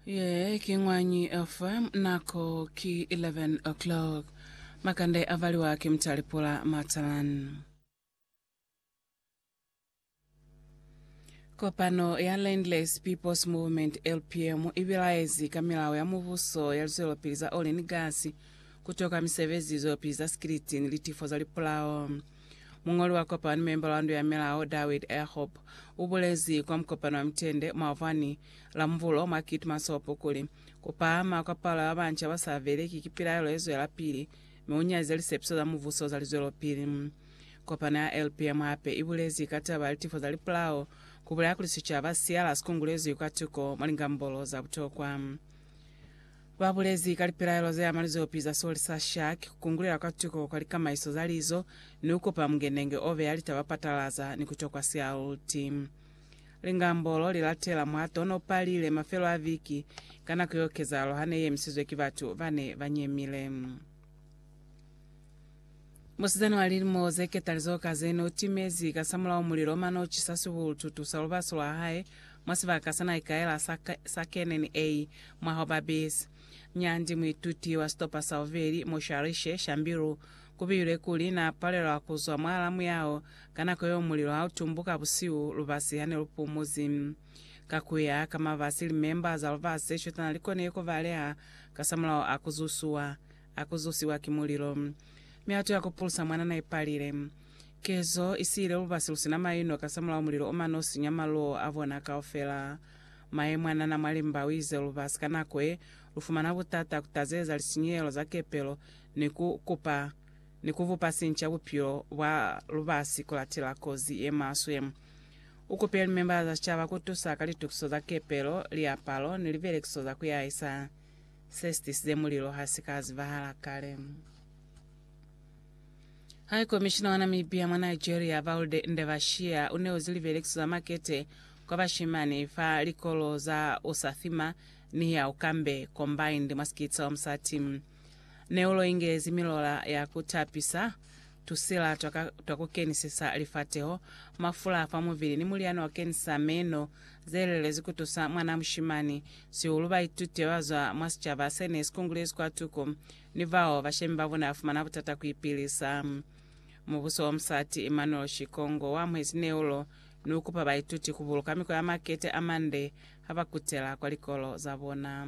Ye ki ñwañi fa nako ki 11 o'clock. Makande a valiwa ki Mtalipula Matalan. Kopano ya Landless People's Movement LPM i bilaezi ka milao ya mubuso ya lizwelopili za oli ni gasi, ku toka misebezi, lizwelopili za sikiliti ni litifo za lipulao. Muñoli wa kopano, memba wa ndu ya milao, Dawid Erhop, u bulezi kwa mukopano wa mitende mwa Vwani la Mubulo mwa Keetmanshoop kuli, Ku pahama kwa palo ya ba banca ba sa beleki ki pilaelo ye zwelapili mi u nyaziza lisepiso za mubuso za lizwelopili. Kopano ya LPM hape i bulezi ka taba ya litifo za lipolao, ku bulela kuli sicaba siyala si kungulezwi kwa tuko mwa lingambolo za butokwa. Ba bulezi ka lipilaelo ze ama lizopi za soli sa shark, ku kungulela kwa tuko kwa likamaiso za lizo, ni ku kupa mungenenge o beya litaba patalaza ni ku tokwa sialuti. Lingambo lo li latela mwa to no palile mafelo a viki ka nako yo kezahalo ha ne i emisizwe ki batu ba ne ba nyemile. Musizana wa lilimo ze ketalizo ka ze n'o timezi kasamulaho mulilo mane o cisa sibulututu sa lubaso lwa hae mwa sibaka sa n'a ikaela sa, sa Canaan A, mwa ho ba bizi. Nyandi, muituti wa sitopa sa bubeli, mo Sharishe, Shambiru, ku builwe kuli, n'a palelwa ku zwa mwa alamu yao ka nako yeo mulilo ha u tumbuka busihu lubasi ha ne lu pumuzi. Ka ku ya ka mabasi, limemba za lubasi ze shotana li konile ku baleha kasamulaho a ku zusuwa. a ku zusiwa ki mulilo. Mihato ya ku pulusa mwanana i palile. Kezo i siile lubasi lu si na maino kasamulaho mulilo o mano sinya maluo a bona kaufela. Mae mwanana mwa limba u ize lubasi ka nako ye lu fumana butata ku tazeza lisinyehelo za kepelo ni ku kupa ni ku bupa sinca bupilo bwa lubasi ku latela kozi ye maswe. U kupile limembala za sicaba ku tusa ka litukiso za kepelo, liapalo, ni libelekiso za ku yahisa. se si tisize mulilo ha si ka zibahala kale. High Commissioner wa Namibia mwa Nigeria Valde Ndebashia u neozi libelekiso za makete kwa bashimani fa likolo za Usathima ni ya Ukambe Combined mwa Sikitsa wa Musati. Neulo ingezi milola ya ku tapisa Tusela twa ka twa ku kenisisa lifateho, mafula fa muvili ni mulyani wa kenisa meno ze lelezi ku tusa mwanaa mushimani sihulu baituti ba zwa mwa sicaba se ne si kungulezi kwa tuko ni bao bashemi ba bona ba fumana butata ku ipilisa. Mubuso wa musati Emmanuel Shikongo wa amuhezi neulo ni u kupa baituti ku buluka mikwa ya makete a mande ha ba kutela kwa likolo za bona.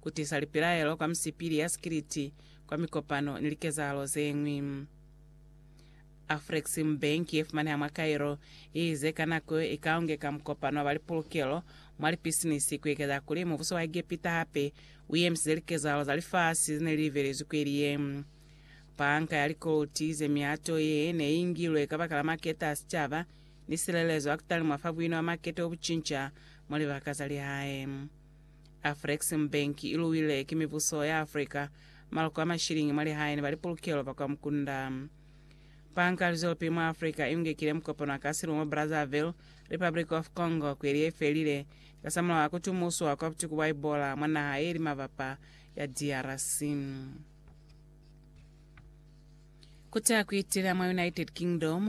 Ku tisa lipilaelo kwa misipili ya sikiliti kwa mikopano ni likezahalo ze ñwi. Afrexim Bank ye fumaneha mwa Cairo i ize ka nako yo i ka ungeka mukopano wa ba lipulukelo mwa lipisinisi ku ekeza kuli mubuso wa Egepita hape u yemisize likezahalo za lifasi ze ne li libelezwi kweli ye. Banka ya Likoluti ize mihato ye ne i ngilwe kabakala maketa a sicaba ni silelezo ya ku talimwa fa buino bwa makete bo bu cinca mwa libaka za lihae. Afreximbank i luwile ki mibuso ya Africa maloko a mashiliñi mwa lihae ni ba lipulukelo ba kwa mukunda. Banka ya Luzwelopili mwa Africa i ungekile mukopano wa ka silu mwa Brazzaville, Republic of Congo, kweli ye felile, kasamulaho a ku tumuswa kwa butuku bwa Ebola mwa naha ye li mabapa ya DRC. Ku ta ku itila mwa United Kingdom,